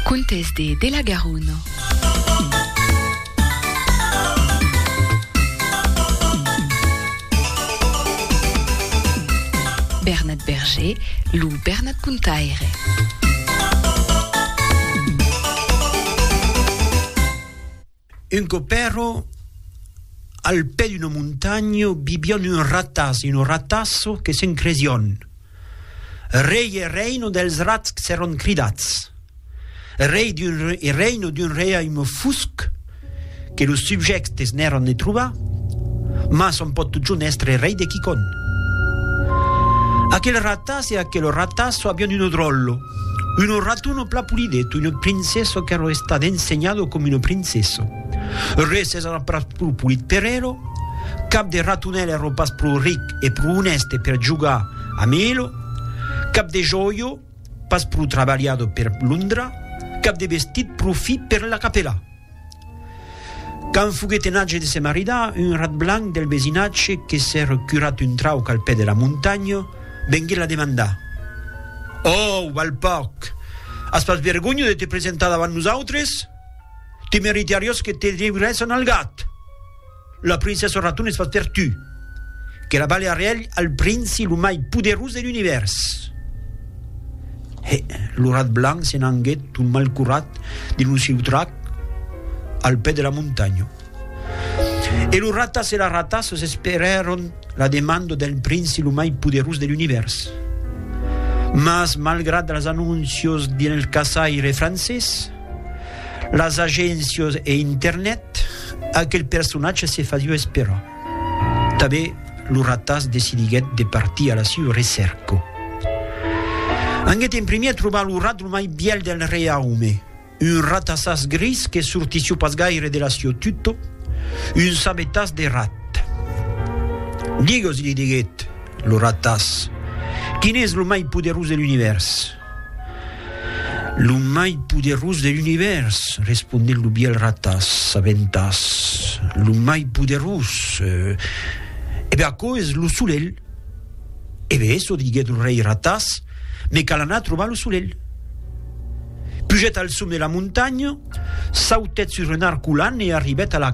Contes de de la Garona. Bernat Berger, lo Bernat Contaire. Un còp èrò al pè d'una montanha, vivián un ratàs e una ratassa que se'n cresián rei e reina dels rats que s'èran cridats rei d'un e reina d'un reiaume fusc que los subjèctes n'èran de trobar, mas ont pòt totjorn èstre rei de quicòm. Aquel ratàs e aquela ratassa avián una dròlla. Uno rato no pla pulideto, uno princeso qu'ero estat ensenhado com uno princeso. Res es ara pas pro pulit per elo, cap de ratonèl ero pas pro ric e pro onèste per jogar amb elo, cap de jòio pas pro trabalhado per londra, cap de vestit pro fi per la capela. Quand foguèt en atge de se maridar, un rat blanc del vesinatge que s'èr curat un trauc al pè de la montanha, venguèt la demandar, Ôu, balpòc! As pas vergonha de te presentar davant nosautres? Te meritariós que te devirèsson al gat! La princessa Raton es fach per tu, que la balha rielh al princi lo mai poderós de l'univèrs. He, lo rat blanc se n'anguèt tot mal curat dins lo siu trac al pè de la montanha. E lo ratas e la ratas esperèron la demanda del princi lo mai poderós de l'univèrs. Mas malgrat las anóncios del caçaire francés, las agéncias e internet, aquel personatge se fasiá esperar. Tanben lo ratàs decidiguèt de partir a la siua recèrca. Anguèt en primièr trobar lo rat lo mai bièl del reiaume, un ratasàs gris que sortissió pas gaire de la siua tuta, un sabetàs de rat. Digues, li diguèt lo ratàs, quin es lo mai poderós de l'univèrs? Lo mai poderós de l'univèrs, responec lo biel ratàs, sabentàs, lo mai poderós, e ben aquò es lo solelh. E ben eso, diguèt lo rei ratàs, me cal anar trobar lo solelh. Pugèt al som de la montanha, sautèt sus un arcolan e arribèt a la.